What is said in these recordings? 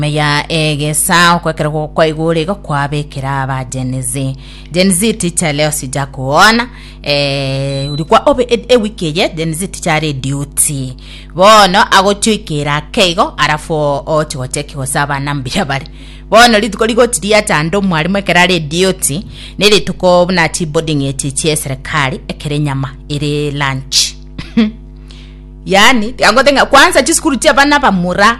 Ime ya egesaa okwekerwa kwaigure igo kwabekera aba Gen Z. Gen Z ticha leo sija kuona eh, uri kwa obe e- ewiki eye Gen Z ticha are duty bono agochoikera ake igo arafu o- oche gocheki gose abana mbuya bare bono rituko rigochi riacha ande omwarimu ekero are duty ne rituko buna chi boarding echi chia eserikari ekere nyama ere lunch yani angotenga kwanza chisukuru chia bana bamura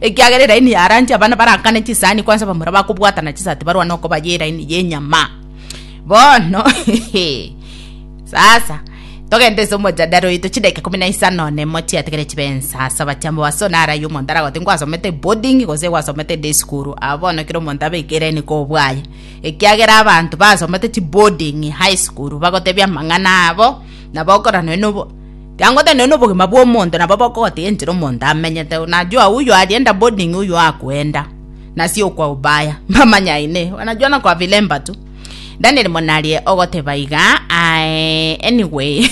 Ekiagera eraini ya rangi abana baraakane chisahani kwansa bamura bakobwatana chisati barwane okobayia eraini y'enyama. Bono sasa togende ase omojadara oito chidakika ikomi na isano na emo chiatigare chibe ensasa batiambo ase one araiyo omonto aragote ngwasomete boarding gose gwasomete day school aa bono kera omonto abeke eraini kobwaye ekiagera abanto basomete chiboarding high school bagotebia amang'ana abo nabo okorana noyo nobo Kiang'o tenene nobogima bw'omonto nabo bokogotiga enchera omonto amenyete, na Joao oyio arienda boarding oyio akoenda nasi okwa Ubaya, mbamanya ine bana Joana kwa Vilemba tu. Daniel monarie ogoteba iga aye anyway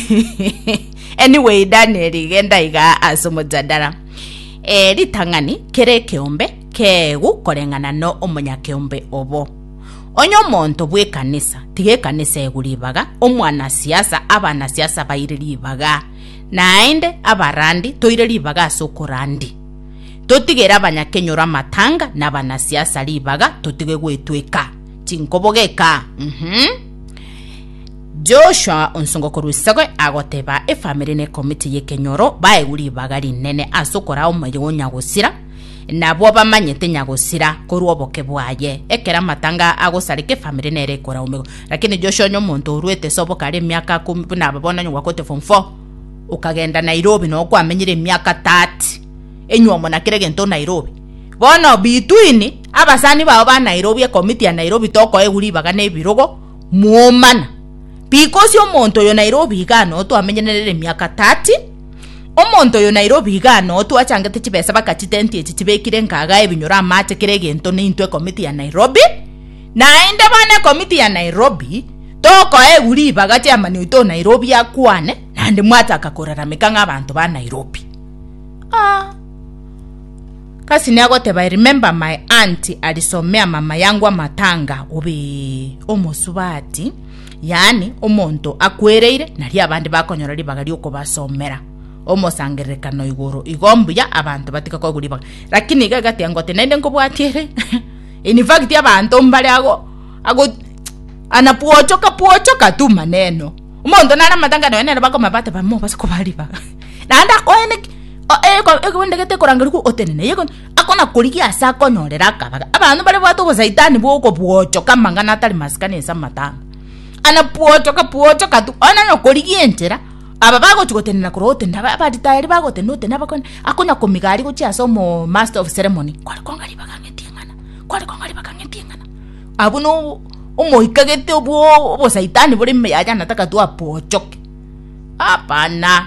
anyway Daniel genda iga ase omojadara. Eh, ritang'ani kera ekeombe keegu koreng'ana no omonyakeombe obo. Onye omonto bw'ekanisa, tiga ekanisa ego ribaga, omwanasiasa, abanasiasa baire ribaga, naende abarandi toire ribaga ase okorandi. Totigere abanyakenyoro amatanga na abanasiasa ribaga, totige gwetweka chinkobogeka. Mm-hmm. Joshua onsongo korwa isiko agoteba efamiri na ekomiti y'ekenyoro baegwe ribaga rinene ase okoraa omoyo onya gosira Nabwo bamanyete nyagosira korwa oboke bwaye. Ekero amatanga agosareka efamiri nere ekoraumegwa. Lakini Joshua onye omonto oruete ase oboke are emiaka akomi buna aba bono onye gwakorete form four okagenda Nairobi noo kwamenyire emiaka 30 enywomo na kera egento Nairobi bono between abasani bao ba Nairobi ekomiti ya Nairobi tokoegwa ribaga na ebirogo mwomana because omonto oyo Nairobi iga noo twamenyire nere emiaka 30 Omonto oyo Nairobi iga noo twachangete chibesa baka chitenti echi chibekire nkaga ebinyoro amache kera egento neintwe ekomiti ya Nairobi naende bono ekomiti ya Nairobi tokoegu ribaga chairman oito o Nairobi akwane nande mwataka korarameka ng'a abanto ba Nairobi ah Kasini agoteba I remember my aunt alisomea mama yangu amatanga obe omosubati yaani omonto akwereire, nario abande bakonyora ribaga ri'okobasomera omosangererekano igoro. Igo mbuya abanto batige koigwa ribaga. Lakini iga egateba ng'a gose naende nkobwatie ere in fact abanto mbare ago ago ana bwochoka bwochoka tu maneno. Omonto nare amatanga nonya nere bakomanya bateba mobase kobaa ribaga naende akoene ki? Oko ekobende gete ekoranga rikwe otenene. Akonakorigia ase akonyorera akabaga. Abanto bare bwate obosaitani bw'okobwochoka amang'ana atari masikani ase amatanga. Ana bwochoka bwochoka tu ona nokorigia enchera aba bagochi gotenena korwa gotenda aba- abaritayari bagotenda otenda abakone akonya komigari gochia ase omo master of ceremony kware konga ribaga ang'eti eng'ana kware konga ribaga ang'eti eng'ana abwo no omoika gete obwo obosaitani bore ime yaye anataka twabwochoke hapana.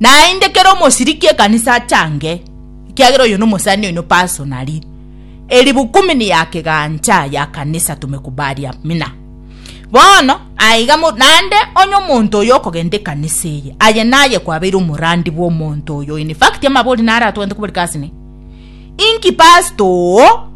Naende kera omosiriki ekanisa achange, ekiagera oyo nomosani oino personally. Eribukumini ya kegancha ya kanisa tumekubaria mina. Bono aiga naende onye omonto oyo okogenda ekanisa eye aye naye kwabeire omorandi bwa omonto oyo in fact amabori nare atogente kobori kasi ne inki pasta oo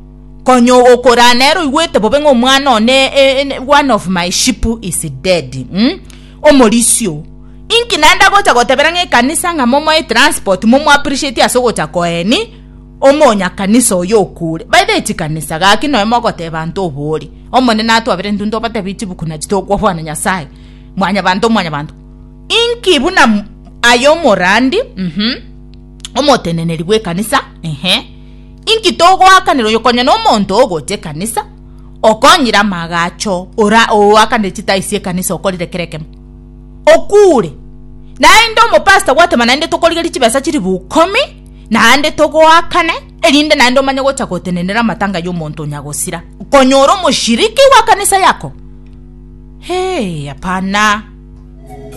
konya okorana ere oigwete bobe ng'a omwana one e, e, one of my ship is dead mm? Omorisia oo, inki naende agocha gotebera ng'a ekanisa ng'a momoe transport momo appreciate ase ogocha koeni omonyakanisa oyo okure. By the way chikanisa gaki nonya mogoteba ante obori Omonene atwabere intwe ntobatebie chibuku nachi tokobwana Nyasaye mwanyabanto mwanyabanto. Inki buna aye omorandi uhmm omoteneneri bw'ekanisa ehe inki togoakanera oyo konya nomonto ogocha ekanisa. okonyire amagacho ora oakane chitai sie kanisa okorire kere kemo okure naende omopasta gwatema naende tokorigeri chibesa chiri bukomi naende togoakane erinde naende omanye gocha gotenenera amatanga ya omonto onyagosira konyora omoshiriki wa kanisa yako hee hapana.